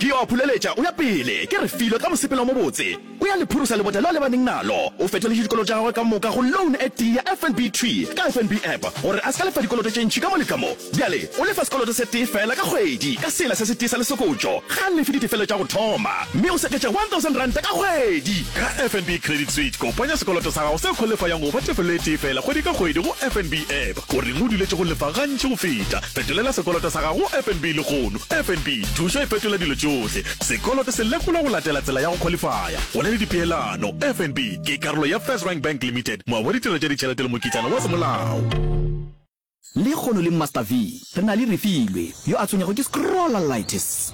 Ke yo a phuleletša, o ya pele, ke re filo ka mosepelo o mobotse. O ya le phurusa lebota leo a lebaneng nalo. O fetoletše dikoloto tša gagwe ka moka go loan e tee ya FNB thwi ka FNB app gore a se ka lefa dikoloto tše ntši ka mo le ka mo. Bjale o lefa sekoloto se tee feela ka kgwedi ka sela se se tee sa lesokotšo. Ga a lefe ditefelo tša go thoma mme o seketša R1,000 ka kgwedi. Ka FNB Credit Switch, kopanya sekoloto sa gago se kgolefayang go ba tefelo e tee feela kgwedi ka kgwedi go FNB app. O reng o duletše go lefa gantši go feta? Fetolela sekoloto sa gago go FNB lehono. FNB, thušo e fetola dilo tšohle. Sekoloto se lekolwa go latela tsela ya go khwalifaya. Go na le dipeelano. FNB ke karolo ya FirstRand Bank Limited, moabi wa ditirelo tša ditšhelete le mokitlana wa semolao. Lehono le Master V re na le Refilwe, yo a tshwenyago ke scrollalitis.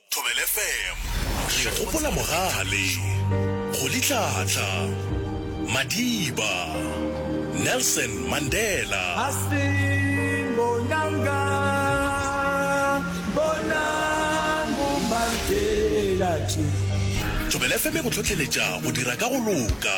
Thobela FM. Re gopola mogale, Kgolitlhatla, Madiba, Nelson Mandela. Astin bonanga bonang bo Mandela tšo. Thobela FM e go hlohleletša go dira ka go loka.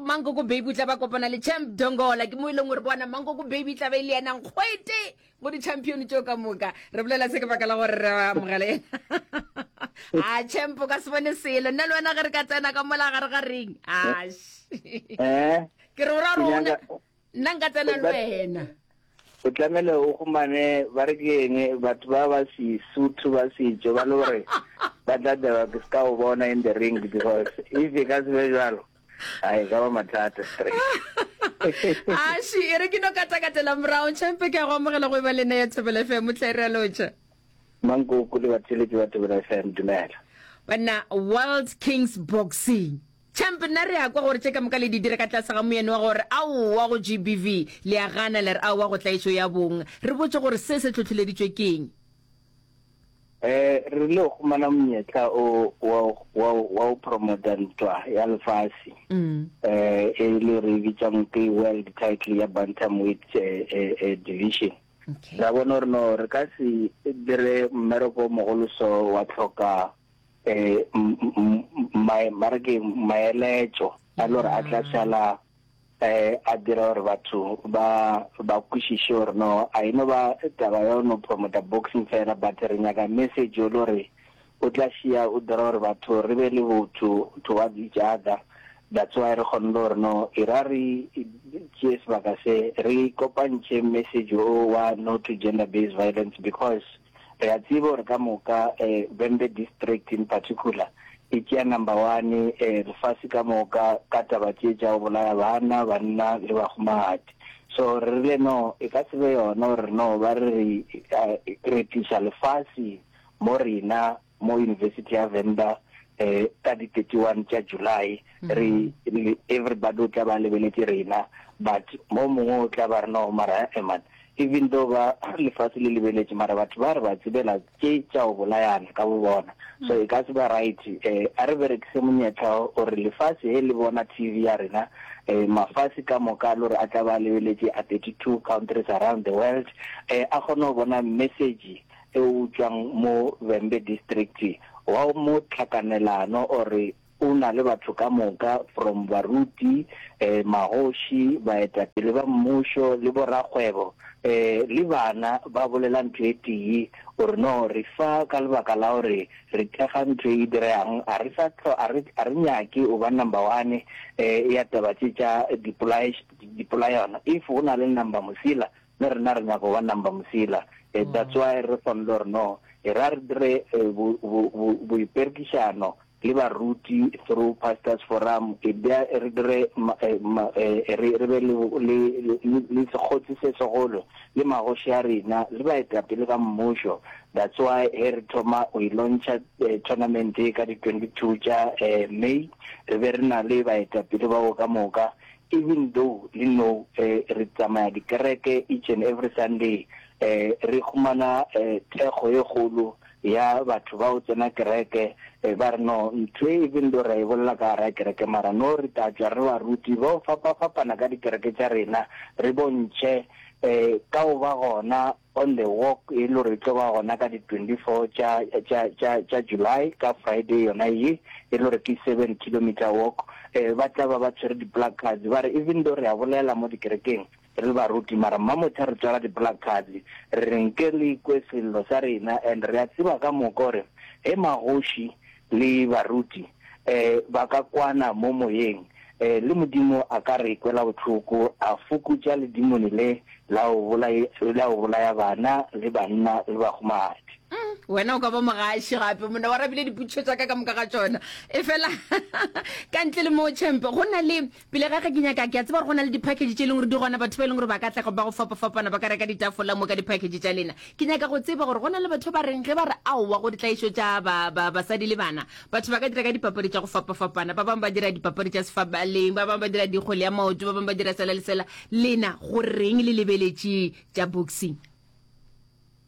mankoko baby tla ba kopana le champ dongola ke mo e leng gore bona mankoko baby tla ba e le yena nkgwete mo di-champion tšeo ka moka re bolela se ke baka la gore re amogele a champ ka se bone selo nna le wena ge re ka tsena ka mola gare ga ring ash eh? ke re o ra gore nna nka tsena le wena o tlamele o gomane ba re ke eng batho ba ba sesotho ba setso ba le gore ba tla taba ke se ka o bona in the ring because if e ka se be jalo a e ka ba mathata straight ashi e re ke no katakatela morago champe ke a go amogela go e ba lena ya thobela fm tla e realoja mankoko le batheletsi ba thobela fm dumela banna world kings boxing Champ, nna re a kwa gore tše ka moka le di dira ka tlase ga moyeno wa gore aowa go GBV, le a gana le re aowa go tlaišo ya bong. Re botše gore se se tlhohleleditšwe ke'ng? Ee, re rile go humana monyetla o wa wa wa go promota ntwa ya lefase eh, e le re e bitsang ke world title ya bantamweight eh, eh, eh, division. Okay. Ra bona gore no re ka se dire mmereko o mogolo so wa tlhoka eh, ba re ke maeletšo a le gore a tla sala eh a dira gore batho ba ba kwishishe gore no a ino ba taba ya no promota boxing fela but re nyaka message yo lore o tla shia o dira gore batho re be le botho towards each other that's why re kgonne gore no e ra re tšee sebaka se re kopantšhe message o wa no to gender based violence because Re a tseba gore ka moka Vhembe District in particular e tšea number one lefase ka moka ka taba tše tša go bolaya bana, banna le bahumagadi. So re rile no e ka se be yona gore no ba re re tliša lefase mo rena mo University ya Venda eh ka di 31 tša July mm-hmm. re re everybody o tla ba lebeletse rena but mo mongwe o tla ba re no mara eman eh, even though ba lefatshe le lebeletse mara batho ba re ba tsebela ke tša o bolayana ka bobona mm. so e ka se ba right eh a re berekise monyetla o re lefatshe he le bona TV ya rena eh mafatshe ka moka lo re a tla ba lebeletse a 32 countries around the world eh a gone go bona message e utšwang mo Vhembe District wa mo Tlhakanelano o re o na le batho ka moka from baruti, magoši, baetapele ba mmušo le borakgwebo le bana ba bolela ntho e tee, o re no re fa ka lebaka la gore re thekga ntho e diregang a re sa a re a re nyake o ba number one ya taba tše tša dipolae dipolaeano if go na le number mosela Le rena re nyaka go ba number mosela eh, that's why re swanelo gore no e ra re dire eh, bo, bo, bo, boiperekišano le baruti through pastors forum e bja re dire ma, eh, ma, eh, re, re be le, le, le, le, le sekgotsi se segolo le magoši a rena le baetapele ba mmušo that's why he re thoma go ilontšha eh, tournament e ka di 22 tša eh, may re be re na le baetapele bao ka moka Even though le know re tsamaya dikereke each and every Sunday, re humana thekgo e kgolo ya batho ba o tsena kereke ba re no, ntho e even though ra e bolela ka gara kereke mara no re tla tšwa re ba ruti ba o fapa-fapana ka dikereke tša rena, re bontšhe ka o ba gona On the Walk e lo re e tlo ba gona ka di 24 tša, tša, tša, tša July, ka Friday yona ye, e lo re ke Seven Kilometre Walk. Eh, ba tla ba ba tshwere di-placards, ba re even though re a bolela mo dikerekeng re le baruti, mara Mmamotha re tswala di-placards, re re nke re ikwe sello sa rena, and re a tseba ka moka gore ge magoši Le baruti e, ba ka kwana mo moyeng e, le Modimo a ka re kwela bohloko, a fokotša ledimoni le la go bolaya, la go bolaya bana le banna le bahumadi. Umm, wena o ka ba mogaši gape, monna o arabile dipotšišo tša ka ka moka ga tšona. Efela, ka ntle le moo, Champ, go na le, Pele ga ge ke nyaka, ke a tseba gore go na le diphakeje tše e leng gore di gona, batho ba e leng gore ba ka tla ba go fapafapana ba ka reka ditafola mo ka diphakeje tša lena. Ke nyaka go tseba gore go na le batho ba reng ge ba re aowa go ditlaišo tša ba, ba, basadi le bana. Batho ba ka dira ka dipapadi tša go fapafapana, ba bangwe ba dira dipapadi tša sefabaleng, ba bangwe ba dira dikgwele ya maoto, ba bangwe ba dira sela le sela. Lena go reng le lebeletše tša boxing?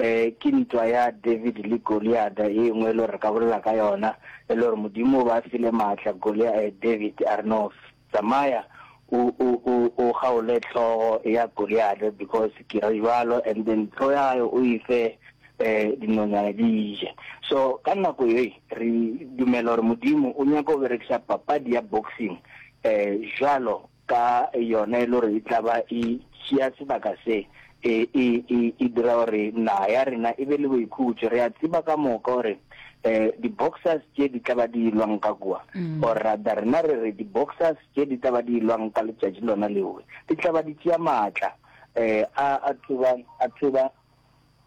Ee, ke ntwa ya David le Goliata e nngwe e le gore re ka bolela ka yona, e le gore Modimo o ba file maatla Golia, eh, David a re no, tsamaya o, o, o, o kgaole hlogo ya Goliata because ke re jwalo and then hlogo ya gae o e fe eh, dinonyane di je. So ka nako ye re dumela gore Modimo o nyaka go berekisa papadi ya boxing eh, jwalo ka yona e le gore e tla ba e tšea sebaka se, e, e, e, e dira gore naga ya rena e be le boikhutšo. Re a tseba ka moka gore um di-boxers tše di tla ba di ilwang ka kua, mm. or rather rena re re di-boxers tše di tla ba di ilwang ka letšatši lona leowe di tla ba di tšea maatla um a, a tloba a tloba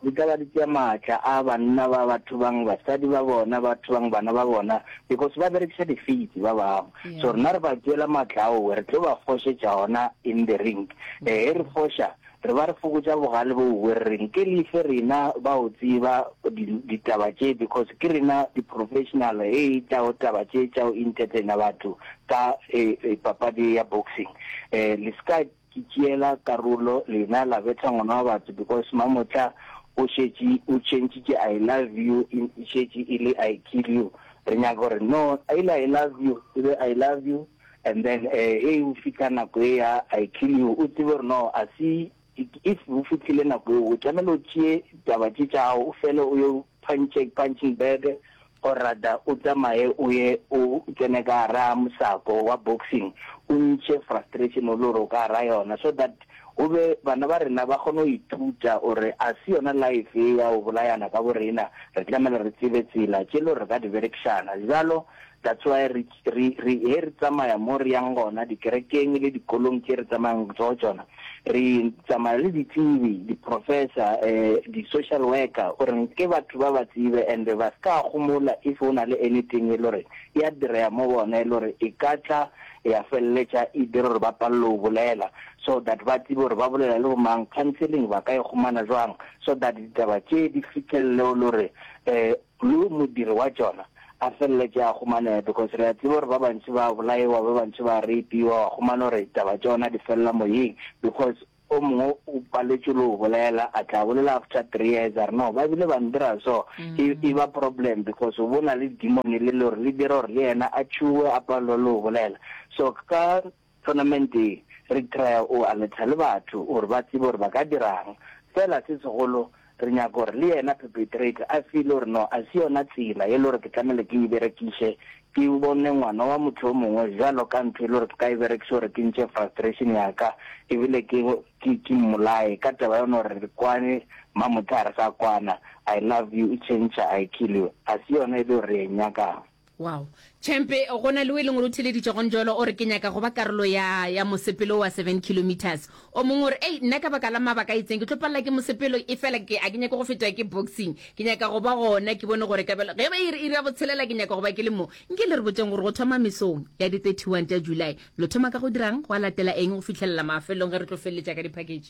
Di ka ba di tšea maatla a banna ba ba thubang basadi ba bona, ba thubang bana ba bona, because ba berekiša difeiti ba bangwe. So rena re ba tšeela maatla ao, re tlo ba fošetša gona in the ring. E ge re foša, re ba re fokotša bogale boo bo re reng ke lefe rena ba o tseba di, ditaba tše, because ke rena di-professional ge e tla go taba tše tša go entertainer batho ka e, e papadi ya boxing. E, le se ka Ke tšeela karolo lena la betha ngwana wa batho because mamotla o šetše o tšhentšitše I love you e šetše e le I kill you re nyaka gore no e le I love you e be I love you and then he o fihla nako e ya I kill you o tsebe gore no a se if o fihlile nako eo o tlamehile o tšee taba tše tša gago o fele o yo punching bag O rata o tsamaye o ye o tsene ka gara mosako wa boxing o ntšhe frustration o lo re o ka gara yona so that go be bana ba rena ba kgone go ithuta gore a se yona life ye ya go bolayana ka borena re tlamela re tsebe tsela tše lo re ka di berekšana bjalo that's why re Re, re, ge re tsamaya mo re yang gona, dikerekeng le dikolong tše re tsamayang go tšona, re tsamaya le ditsebi, diprofesa, eh, di-social worker, o reng, ke batho ba ba tsebe, and ba se ka gomola if go na le anything e le gore e a direa mo bona, e le gore e ka tla ya feleletša e dira gore ba palelwe go bolela, so that ba tsebe gore ba bolela le bomang, counselling ba ka e humana bjang, so that ditaba tše di fihlelele o le gore, eh, Lu modiri wa tšona a feleletše a humanega because re a tseba gore ba bantši ba bolaewa, ba bantši ba reipiwa, wa humana gore taba tšona di felela moyeng because o mongwe o paletšwe le o bolela, a tla bolela after three years a re no ba bile ba ndira so, e e ba problem because o bo na le demon le le gore le dira gore le yena a tšhuwe a palelwe le o bolela. So ka Tournament e, re trya o aletha le batho gore ba tsebe gore ba ka dira'ng. Feela se segolo, re nyaka gore le yena perpetrator a feele gore no a se yona tsela e le gore ke tlamehile ke e berekiše, ke bone ngwana wa motho yo mongwe bjalo ka ntho e le gore ke ka e berekiša gore ke ntše frustration ya ka e bile ke, ke, ke mmolaye ka taba yona gore re kwane mamotha ga re sa kwana, I love you, e change I kill you, a se yona e le gore re e nyaka'ng. Wow. Chempe, go na le o e leng gore o theleditše gone jalo o re ke nyaka go ba karolo ya ya mosepelo wa seven kilometres o mongwe o re ei nna ka baka la mabaka a itseng ke tlo palela ke mosepelo e fela ke a ke nyake go fetwa ke boxing ke nyaka go ba gona ke bone gore kabelo ge ba ire ire ya botshelela ke nyaka go ba ke le mo nke le re botseng gore go thoma mesong ya di 31 tša july lo thoma ka go dirang go a latela eng go fitlhelela mafelong ge re tlo feleletša ka diphaketše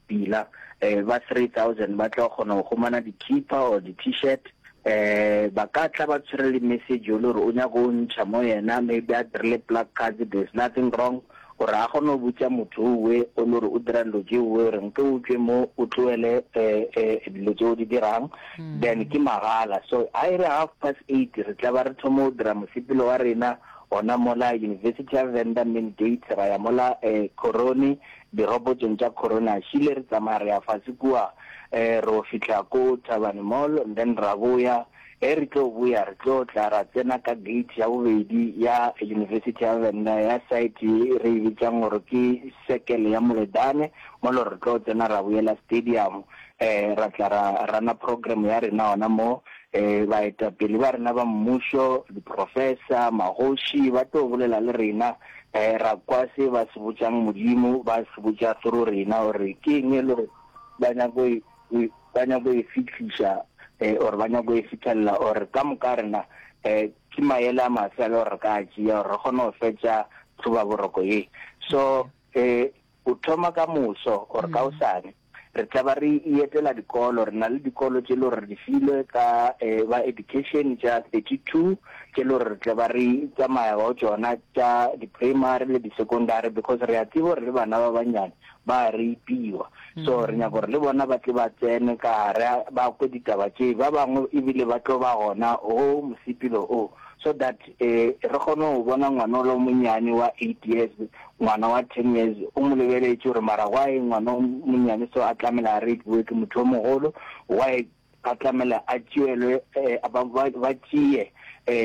pila um ba 3000 ba tlo kgona go humana dikhipa or di-t-shirt um ba ka tla ba tshwere le message yo le gore o nyaka o ntšha mo yena maybe a dirile plug cards there's nothing wrong gore a kgone go botsa motho owe o le gore o dira dilo tse owe gore nke o tswe mo o tloele um dilo tse o di dirang hmm. then ke magala so a e re half past eight re tla ba re thoma o dira mosepelo wa rena gona mola university ya venda main gate ra ya mola um corone Dirobotong tša Corona re ile re tsamaya re ya fase kua re yo fihla ko Thabane Mall and then ra boya. Ge re tlo boya re tlo tla ra tsena ka gate ya bobedi ya University ya Venda ya side ye re e bitšang gore ke Circle ya Moledane mo e le gore re tlo tsena ra boyela stadium ra tla ra runner program ya rena gona mo. Baetapele ba rena ba mmušo, di-professor, magoši ba tlo bolela le rena. ra kwa se ba se botšang Modimo, ba se botša through rena gore ke eng e le gore ba nyako e, e, ba nyako e fihliša eh, or ba nyako e fithelela or ka moka rena eh, ke maele a mafe a le gore re ka a tšea gore re kgone go fetša tlhobaboroko ye so eh, Go thoma ka moso or ka osane re tlaba re ietela dikolo. Re na le dikolo tše le gore re di filwe ka ba education tša 32 tše le gore re tlaba re tsamaya go tšona tša di primary le di secondary because re a tseba gore le bana ba bannyane ba a rapiwa so re nyaka gore le bona ba tle ba tsene ka gare ba kwe ditaba tše ba bangwe ebile ba tlo ba gona go mosepelo o so that re kgone go bona ngwana o le monnyane wa 8 years Ngwana wa ten years o mo lebeletše gore mara why ngwana o monnyane so a tlamela a rapiwe ke motho o mogolo, why a tlamela a tšeelwe ba tšee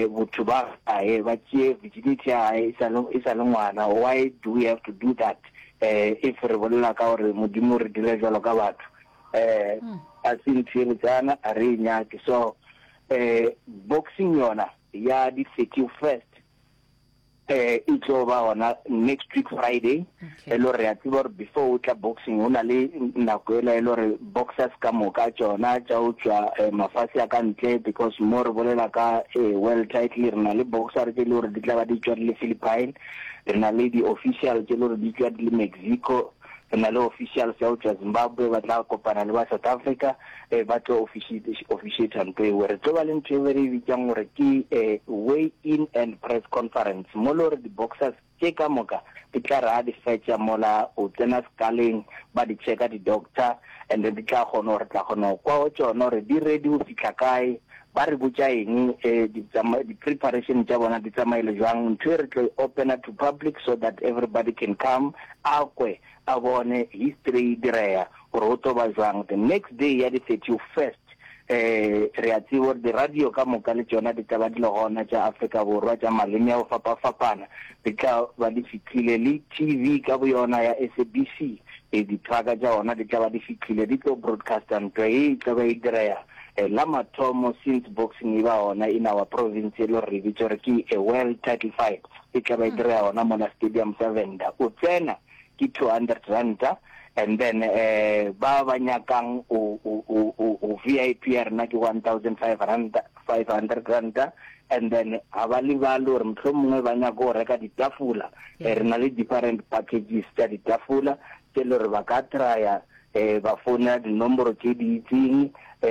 botho ba gae, ba tšee virginity ya gae e sa le ngwana, why do we have to do that if re bolela ka gore Modimo o re dira jwalo ka batho? A se ntho e botsana, a re e nyake. So boxing yona ya di thirty first Eh e tlo ba gona next week Friday e lo re a tseba gore before o tla boxing o na le nako ela e lo re boxers ka moka tšona tša o tšwa eh, mafase a ka ntle because mo re bolela ka eh, world title re na le boxer tše e le gore di tla ba di tšwa di le Philippine re na le di-official tše e le gore di tšwa di le Mexico re na le officials ya go tšwa Zimbabwe ba tla kopana le ba South Africa eh, ba tlo officiate ntho ewe re tlo ba le ntho ewe re e bitsang gore ke eh, way in and press conference mo le gore di-boxers tše ka moka di tla re a di fetša mola o tsena sekaleng ba di checka di-doctor and then di tla kgona gore tla kgona go kwa go tšona gore di ready go fitlha kae Ba re botša eng? E, di tsama, di preparation tša bona di tsamaile bjang? Ntho e re tlo e opena to public so that everybody can come a kwe, a bone history e direya gore go tlo ba bjang. The next day ya di thirty first, e, re a tseba gore di radio ka moka le tšona di tla ba di le gona tša Afrika Borwa tša maleme a go fapafapana di tla ba di fihlile, le TV ka boyona ya SABC, e, di truck tša ona di tla ba di fihlile di tlo broadcaster ntwa ye e tla ba e direya. La mathomo since boxing e ba gona in our province e le gore re bitsa gore ke a world title fight e tla ba e direga gona mona stadium sa Venda. O tsena ke 200 ranta and then um ba ba nyakang o o o o o VIP ya rena ke 1500 ranta and then ga ba lebale gore motlho mongwe ba nyaka go reka ditafula eh, re na le different packages tsa ditafula tse le gore ba ka trya um ba founela dinomboro tse di itseng um